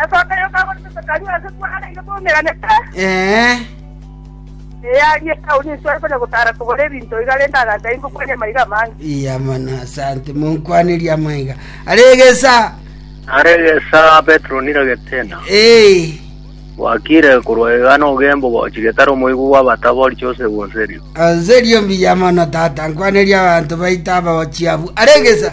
Esoka eyo kagorete Zekaria ase kwaraire kwaumeranete, Ee, eye aria etauni ensuya ere konya gotara kogora ebinto iga rende agancha ingo kwani amaiga amange. iya mana asante monkwanerie amaiga aregesa Aregesa Petero niragetena. ee Gwakire korwa iga nogembo gochi getari omoigwa bw'abatabori chose gwenserio. anserio mbiya mono tata nkwanerie abanto baito abagochiabu aregesa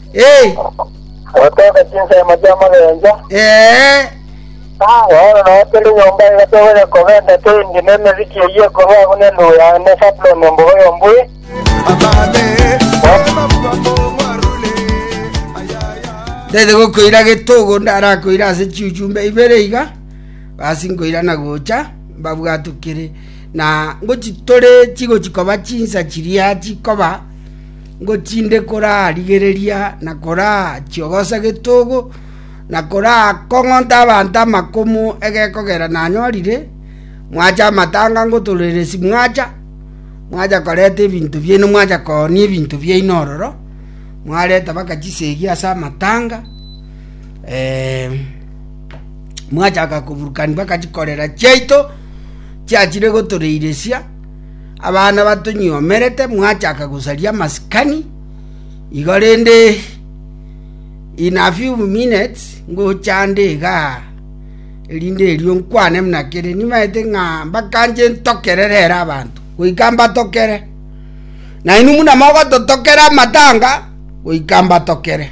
Ee, Gotoka chinsemo chi'amagencho, ee, bono nao kera enyomba iga togocha kobenta toindi nemeziki eyio ekorwa agwo nendugu ya ne Sabuloni embogo y'ombui. tete gokoira getogo ndarakoira ase chiuchumbe ibere iga basi nkoira na gocha mbabwatokere na ngochitore chigochi koba chinsa chiria chikoba Ngo tinde korarigereria na korachiogosa getogo, na korakong'onta abanto amakumu egekogera nanyorire? Mwacha amatanga ngotoreresi mwacha, mwacha koreta ebinto biaino mwacha koonia ebinto biaino ororo, mwareta mpaka chisegi ase amatanga, ee, mwachaka koburukania mpaka chikorera chiaito chiachire gotoreiresia. Abana batonyioomerete mwachaka gosaria amasikani, igo rende in a few minutes ngocha nde iga, erinde erio nkwane buna kere. Nimaete ng'a mbakanche ntokere rero abanto, goika mbatokere. Nainwe buna mogototokera amatanga, goika mbatokere.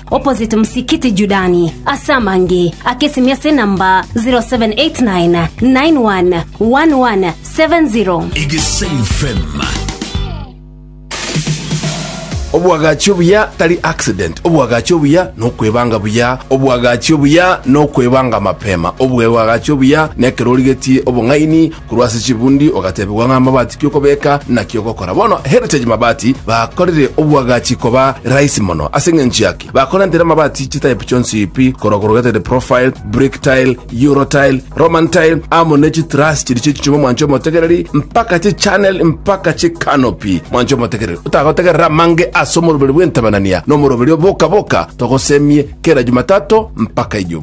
opposite Msikiti Judani, ase amange ake esimi ase enamba 0789 91 1170. Egesain FM. obwagachi obuya tari accident obwagachi obuya nokwebanga buya obwagachi obuya nokwebanga mapema obwebwagachi obuya nekero origetie obong'aini Korwa ase chibundi ogatebigwa ng'a amabati ki okobeka naki ogokora. Bono Heritage Mabati bakorire obwagachi koba rahisi mono. Ase engencho yaki, bakorentire amabati chitype chionsi pi, korwa corrugated profile, brick tile, euro tile, Roman tile, amo ne chitruss chiria chie chichuma mwanche omotegereri, mpaka chichannel mpaka chicanopy. Mwanche omotegereri, otagotegerera amange ase omoroberi bw'entabanania na omoroberi oboka boka, togosemie kera Jumatato mpaka Ijumaa.